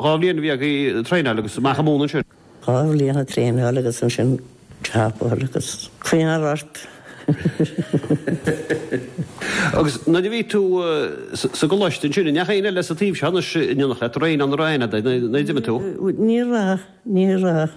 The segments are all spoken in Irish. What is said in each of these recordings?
Dhá bhliain a bhí ag traenáil agus amach ag múineadh ansin. Dhá bhliain ag traenáil agus ansin ceapadh agus cuimhneamh ort. Agus nuair a bhí tú sa gcoláiste ansin, an mbeadh éinne eile sa taobh seo anois in éineacht leat, roimhe ná ina dhiaidh nuair a d'imigh tú? Ní raibh, ní raibh.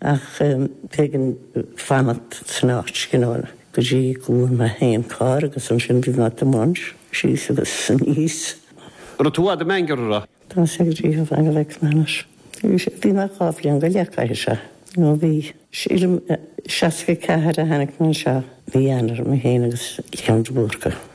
Ach b'éigean fanacht san áit go leor go dtí go bhfaighfeadh mé féin carr agus ansin bhí mé ag tiomáint síos agus aníos. Raibh tú i bhfad i mBeannchar, an raibh? Tá sé go dtí thar an X Manus. Bhí mé dhá bhliain go leith, caithfidh sé. Ó bhí. 64 a tháinig mé anseo, mí Eanáir, mé féin agus Leon de Búrca.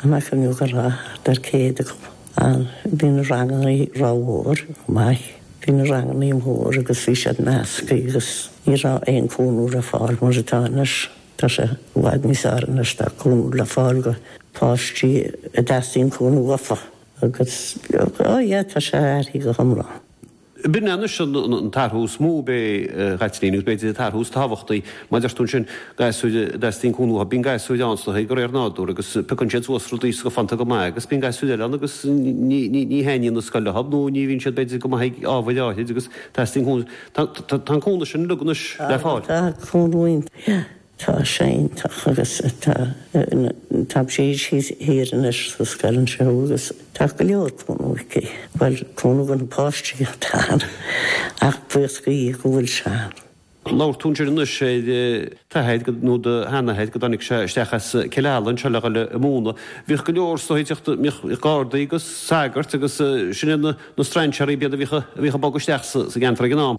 Déarfainn go raibh thart ar 100 acu ann, bhí na ranganna rómhór, maith, bhí na ranganna mór agus bhí siad meascthaí agus ní raibh aon cúnamh le fáil mar atá anois. Tá sé i bhfad níos fearr anois, tá cúnamh le fáil go páistí a dteastaíonn cúnamh uafa agus, oh yeah, tá sé athraíthe go hiomlán. B'in anois an t-athrú is mó ab ea, a Chaitlín, agus b'fhéidir an t-athrú is tábhachtaí. Mar a deir tú ansin, gasúir a dteastaíonn cúnamh uathu, bíonn gasúir an-slachtmhar de réir nádúir, agus piocann siad suas rudaí go hiontach maith, agus bíonn gasúir eile ann agus ní thaitníonn an scoil leo, nó ní bhíonn siad, b'fhéidir, go maith ag ábhair áithrid, agus teastaíonn cúnamh. Tá an cúnamh sin againn anois le fáil. Tá. Tá sé iontach agus tá Taibsís thiar anois sa scoil anseo agus tá go leor cúnamh aici. Bhuel, cúnamh do na páistí atá ann ach buíochas le Dia go bhfuil sé ann. Labhair tú ansin anois ar d'athair nó do sheanathair, go dtáinig sé isteach as Cill Ala anseo le dhul ag múineadh. Bhíodh go leor sa Ghaeltacht, bhíodh gardaí agus sagairt agus sin iad na strainséaraí, b'iad a bhíodh ag bogadh isteach sa gceantar ag an am.